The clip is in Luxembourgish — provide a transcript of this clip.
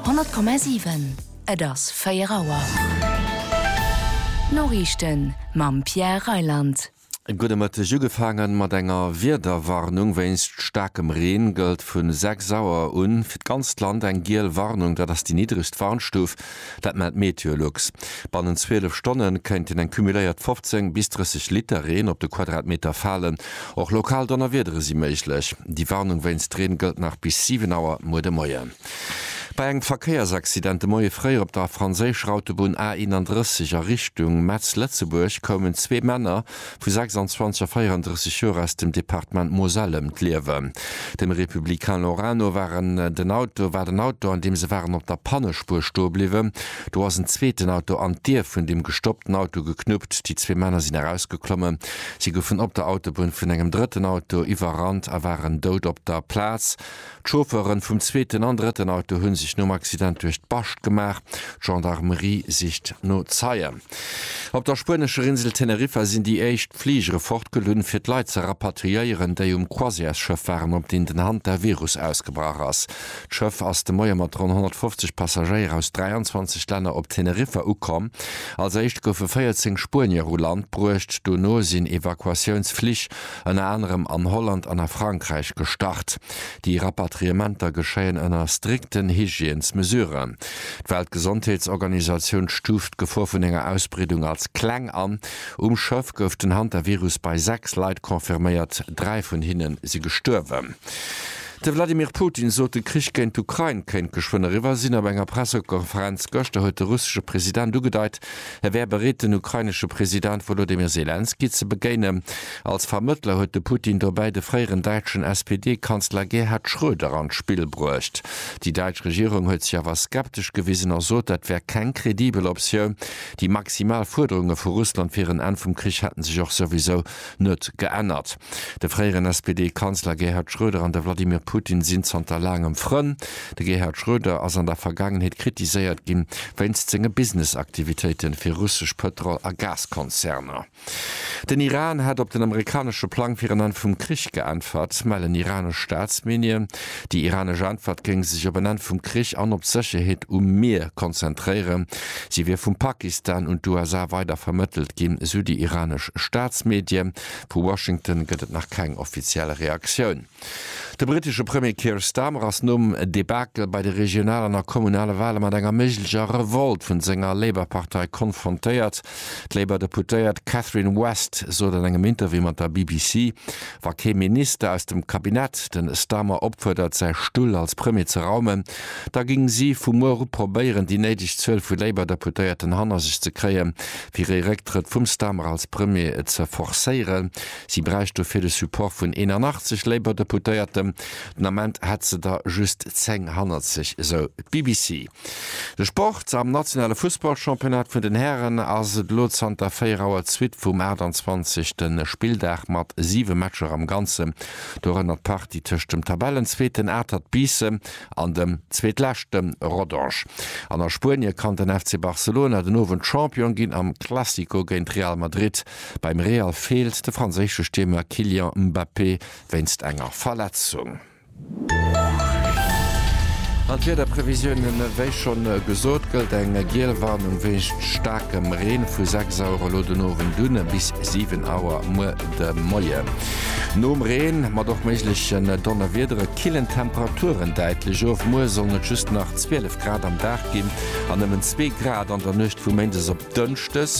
Honnert Komma siwen, et ass 4 Auer. D'Noriichten mam Pierre Reyland. E gudde Mëtteg. Ugefaange mat enger Wiederwarnung wéinst staarkem Reen gëllt vu 6 Auer un fir d'ganzt Land eng giel Warnung. Dat ass déi niddregst Warnstuf. Dat mellt Meteolux. Bannent 12 Stonne kéinten eng cumuléiert 15 bis 30 Liter Reen op de Quadratmeter falen. Och lokal Donnerwiedere si méiglech. Déi Warnung wéinst Reen gëllt nach bis 7 Auer muer de Moien. Bei engem Verkéiersaccident de Moie fréier op der franséischer Autobunn A 31 a Richtung Metz-Lëtzebuerg koumen zwee Männer vu 26 a 34 Joer aus dem Departement Moselle ëm d'Liewen. Dem Républicain Lorano war en den Auto war den Auto, an deem se waren, op der Pannespuer stoe bliwwen. Do ass en zweeten Auto an d'Dier vun dem gestoppten Auto geknuppt. Déi zwee Männer sinn erausgeklommen. Si goufen op der Autobunn vun engem drëtten Auto iwwerrannt a waren dout op der Plaz. D'Chauffeuren vum zweeten an drëtten Auto hunn sech nom Accident duerch d'Bascht gemaach. D'Gendarmerie sicht no Zeien. Op der spuenescher Insel Teneriffa sinn déi éischt Fligere fortgelunn, fir d'Leit ze rapatriéieren, déi um Croisièresschëff waren, op deen den Hantavirus ausgebrach ass. D'Schëff ass de Moie mat ronn 150 Passagéier aus 23 Länner op Teneriffa ukomm. Als éischt goufe 14 Spuenier u Land bruecht, dono sinn Evakuatiounsflich ënner anerem an Holland an a Frankräich gestart. Déi Rapatriementer geschéien ënner strikten Hygiènesmesuren. D'Weltgesondheetsorganisatioun stuuft d'Gefor vun enger Ausbreedung als kleng an. Um Schëff gouf den Hantavirus bei 6 Leit confirméiert, 3 vun hinne si gestuerwen. De Wladimir Putin sot, de Krich géint d'Ukrain kéint geschwënn eriwwer sinn. Op enger Pressekonferenz gëschter huet de russesche President ugedeit, Hie wär bereet den ukrainesche President Wolodymyr Selenskyj ze begéinen. Als Vermëttler huet de Putin dobäi de fréieren däitschen SPD-Kanzler Gerhard Schröder an d'Spill bruecht. Déi däitsch Regierung huet sech awer skeptesch gewisen a sot, dat wär keng kredibel Optioun. Déi maximal Fuerderunge vu Russland fir en Enn vum Krich hätten sech och souwisou Net geännert. De fréieren SPD-Kanzler Gerhard Schröder an de Wladimir Putin sinn zanter laangem Frënn. De Gerhard Schröder ass an der Vergaangenheet kritiséiert ginn, wéinst senge Business-Aktivitéiten fir russesch Pëtrol a Gaskonzerner. Den Iran hätt op den amerikanesche Plang fir en Enn vum Krich geäntwert, mellen iranesch Staatsmedien. Déi iranesch Äntwert géing sech op en Enn vum Krich an op d'Sécherheet um Mier konzentréieren. Si wier vum Pakistan un d'USA weider vermëttelt ginn, esou déi iranesch Staatsmedie. Vu Washington gëtt et nach keng offiziell Reaktioun. De brittesche Premier Keir Starmer ass nom Debakel bei de regionalen a kommunale Wale mat enger méiglecher Revolt vun senger Labour-Partei konfrontéiert. D'Labour Deputéiert Catherine West sot an engem Interview mat der BBC, wa kee Minister aus dem Cabinet de Starmer opfuerdert säi Stull als Premier ze raumen, da géing si vu muer u probéieren déi néideg Zuel vu Labour Deputéierten hanner sech ze kréien, fir ee Récktrëtt vum Starmer als Premier ze forcéieren. Si bräicht dofir de Support vun 81 Labour Deputéierten. Den Ament hätt se der just 10 hannert sech, sou d'BBC. De Sport, Am nationale Fussballchampionnat vun den Hären ass et elo zanter 4 Auer d'Suite vum 28. Spilldag mat 7 Matcher am Ganzen, dorënner d'Partie tëscht dem Tabellenzweeten Atert Biissen an dem Zweetleschte Rodange. An a Spuenie kann den FC Barcelona den Owend Champion ginn am Classico géint Real Madrid. Beim Real feelt de franséische Stiermer Kylian Mbappé wéinst enger Verletzung. An d'Wiederprevisiounen, wéi schonn gesot, gëllt eng giel Warnung wéinst staarkem Reen vu 6 Auer elo den Owend un bis 7 Auer muer de Moien. Nom Reen, mat och méiglechen Donnerwiedere, killen d'Temperaturen däitlech of. Muer sollen et just nach 12 Grad am Dag ginn an nëmmen zwee Grad an der Nuecht vu Méindes op Dënschdes.